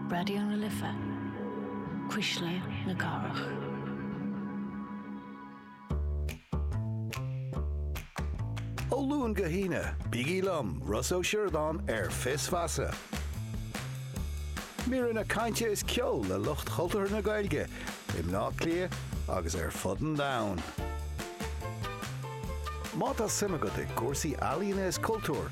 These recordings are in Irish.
Raidió na Life, Cuisle na Cathrach. Ó Luan go hAoine, bígí liom, Ros Ó Siordáin, ar Fios Feasa. Míreanna cainte is ceol le lucht chultúrtha na Gaeilge i mBleá Cliath agus ar fud an domhain. Má tá suim agat i gcúrsaí ealaíne is cultúir,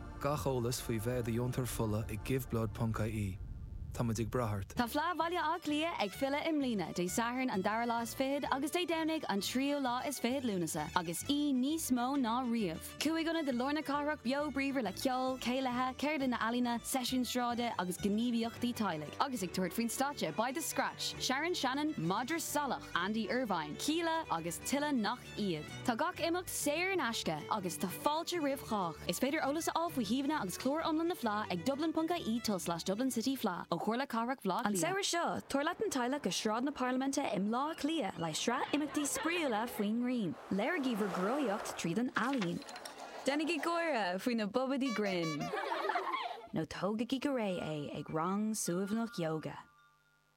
Gach eolas faoi bheith i do dheontóir fola ag Giveblood ponc ie. Táimid ag brath ort. Tá Fleadh Bhaile Átha Cliath ag filleadh i mbliana, Dé Sathairn an dara lá is fichead agus Dé Domhnaigh an tríú lá is fichead Lúnasa, agus í níos mó ná riamh! Cúig ionad i lár na cathrach beo bríomhar le ceol, céilithe, ceardlanna ealaíona, seisiúin sráide agus gníomhaíochtaí teaghlaigh. Agus ag tabhairt faoin stáitse beidh The Scratch, Sharon Shannon, Madra Salach, Andy Irvine, Kíla agus tuilleadh nach iad! iad. Tá gach imeacht saor in aisce agus tá fáilte roimh chách. Is féidir eolas a fháil faoi shuíomhanna agus clár iomlán na Fleá ag dublin ponc ie tulslais Dublin City Fleadh ó Chomhairle Cathrach Bhleá Cliath. An samhradh seo, tabhair leat an teaghlach go Sráid na Parlaiminte i mBleá Cliath le sraith imeachtaí spraíúla faoin ngrian. Léirigí bhur gcruthaitheacht tríd an ealaín. Déanaigí gáire faoi na babaidí grinn. Nó tógaigí go réidh é ag rang suaimhneach yoga.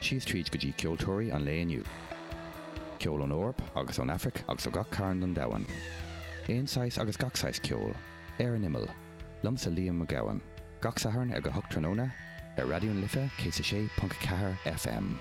Síos tríd go dtí ceoltóirí an lae inniu. Ceol ón Eoraip agus ón Afraic agus ó gach cearn den domhan. Aon saghas agus gach saghas ceoil. Ar an Imeall. Liomsa Liam Mac Gabhann. Gach Satharn ag a hocht tráthnóna, ar Raidió na Life 106.4 FM.